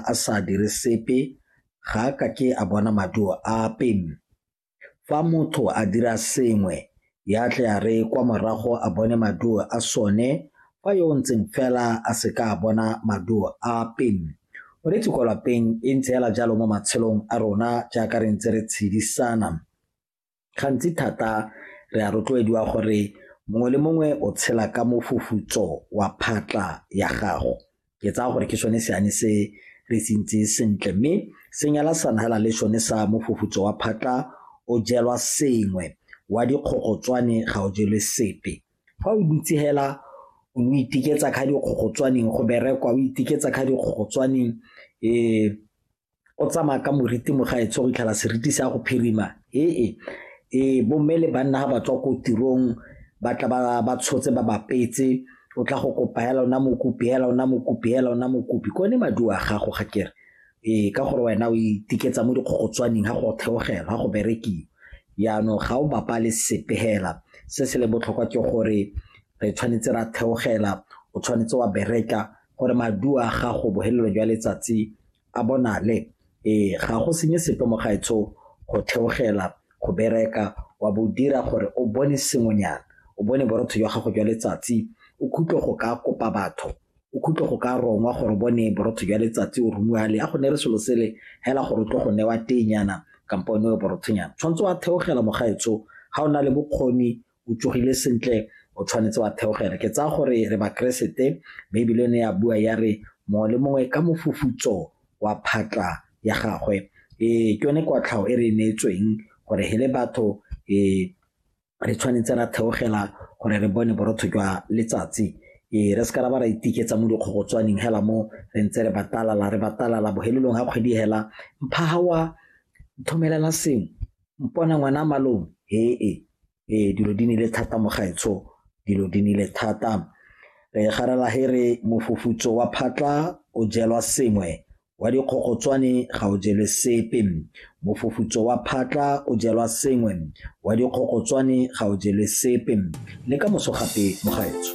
a sa dire sepe ga a ka ke a bona maduo ape. Fa motho a dira sengwe, ya tle a re kwa morago a bone maduo a sone fa yo o ntseng fela a se ka a bona maduo ape. Moreetsi kwa lapeng e ntse fela jalo mo matshelong a rona jaaka re ntse re tshedisana. Gantsi thata re a rotloediwa gore mongwe le mongwe o tshela ka mofufutso wa phatla ya gago. Ke tsaya gore ke sone seane se re se ntse sentle, mme se nyala sana hela le sone sa mofufutso wa phatla o jelwa sengwe, wa dikgogotswane ga o jelwe sepe. Fa o dutse hela o iteketsa kha dikgogotswaneng, go berekwa o iteketsa kha dikgogotswaneng . o tsamaya ka moriti mo ga etsho go itlhela seriti se ya go phirima ee ee bomme le banna ga ba tswa ko tirong ba tla ba tshotse ba bapetse o tla go kopa hela ona mokopi hela ona mokopi hela ona mokopi ko ne maduo a gago ga kere ee ka gore wena o itiketsa mo dikgogotswaneng ga go theogela ga go berekiwa yaanong ga o bapale sepe hela se se le botlhokwa ke gore re tshwanetse ra theogela o tshwanetse wa bereka gore maduo a gago bohelelo jwa letsatsi a bonale ee ga go senye sepe mo gaetsho go theogela go bereka wa bo dira gore o bone sengwenyana o bone borotho jwa gago jwa letsatsi o khutlwe go ka kopa batho o khutlwe go ka rongwa gore bone borotho jwa letsatsi o romiwa le a go ne re selo sele hela gore o tlo go newa tenyana kampo o newe borothonyana tshwanetse wa theogela mo gaetsho ga o na le bokgoni o tsogile sentle o tshwanetse wa theogela ke tsaya gore re bakeresete baebile ne ya bua ya re mongwe le mongwe ka mofufutso wa phatla ya gagwe ee ke yone kwatlhao e re e neetsweng gore he le batho ee re tshwanetse ra theogela gore re bone borotho jwa letsatsi ee re se ka ra ba ra itiketsa mo dikgogotswaneng hela mo re ntse re batalala re batalala bohelelong ga kgwedi hela mphaga wa thomelela sengwe mpone ngwana malome hee ee dilo di nile thata mo gaetsho dilo di nile thata re garela he re mofufutso wa phatla o jelwa sengwe wa dikgogotswane ga o jelwe sepe mofufutso wa phatla o jelwa sengwe wa dikgogotswane ga o jelwe sepe le ka moso gape mo gaetsho